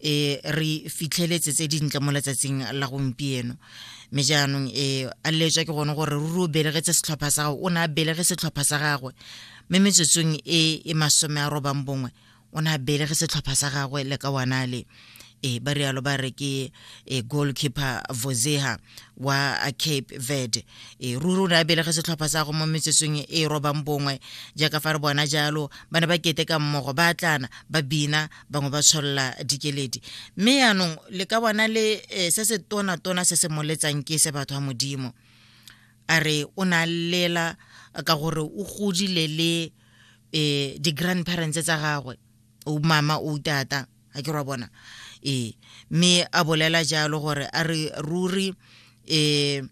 e re fitlheletse tse dintle mo letsatsing la gompieno mme jaanong e a letswa ke gone gore ruri o belegetse setlhopha sa gagwe o ne a belege setlhopha sa gagwe mme metsotsong e e masome a robang bongwe o ne a belege setlhopha sa gagwe le ka wanale e ba rialo ba re ke e goalkeeper vozeha wa cape verde e ruri o ne a belege setlhopha sa go mo metsotsong e robang bongwe jaaka fa re bona jalo ba ne ba keteka mmogo ba tlana ba bina bangwe ba tsholola dikeledi mme yaanong le ka bona le eh, se se tona-tona se se moletsang ke se batho ba modimo a re o ne a lela ka gore o godile le eh di-grandparents tsa gagwe o mama o tata ga ke ra bona ee mme a bolela jalo gore a re ruri um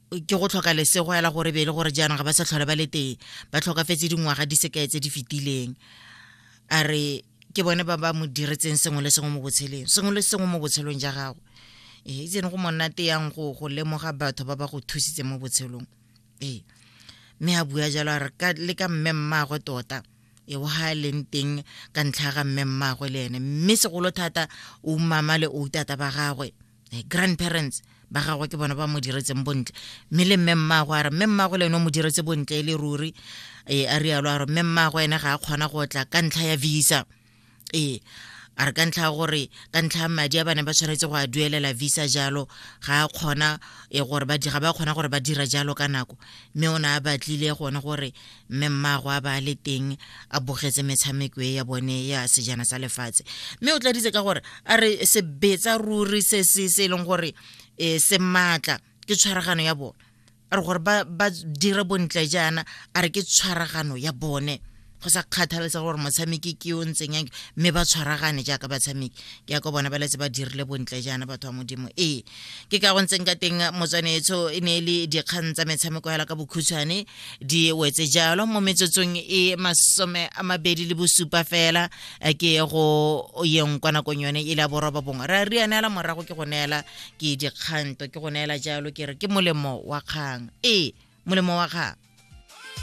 ke go tlhoka lesego ela gore be e le gore jaanong ga ba sa tlhole ba le teng ba tlhokafetse dingwaga di sekae tse di fetileng a re ke bone ba ba mo diretseng sengwe le sengwe mo botsheleng sengwe le sengwe mo botshelong ja gago ee eh, itsene go monnate yang go go lemoga batho ba ba go thusitse mo botshelong ee mme a bua jalo a re le ka mme mmaagwe tota e wa ga leng teng ka ntlha ga mme mmaagwe le ene mme segolo thata o mama le o tata ba gagwe eh, grandparents ba gagwe ke bona ba mo diretseng bontle mme le mme mmago a re mme mmago le ene o mo diretse bontle e le ruri ee a rialo a re mme mmago ene ga a kgona go tla ka ntlha ya visa ee a re ka ntlha ya gore ka ntlha ya madi a ba ne ba tshwanetse go a duelela visa jalo ga a kgona e gore ba ga ba kgona gore ba dira jalo ka nako mme o ne a batlile gone gore mme mmaagwe a ba a le teng a bogetse metshameko e ya bone ya sejana sa lefatshe mme o tladitse ka gore a re sebetsa ruri se se se e leng gore um se maatla ke tshwaragano ya bone a re gore ba dira bontle jaana a re ke tshwaragano ya bone go sa kgathaletsa gore motshameki ke o ntseng yang mme ba tshwaragane jaaka batshameki ke ya ka bona ba letse ba dirile bontle jaana batho ba modimo ee ke ka go ntseng ka teng motswanetso e ne e le dikgang tsa metshameko hela ka bokhutshwane di wetse jalo mo metsotsong e masome a mabedi le bosupa fela eh, ke go yeng kwa nakong yone e le a boroba bongwe ra re anela morago ke go neela ke dikganto ke go neela jalo ke re ke molemo wa kgang ee molemo wa kgang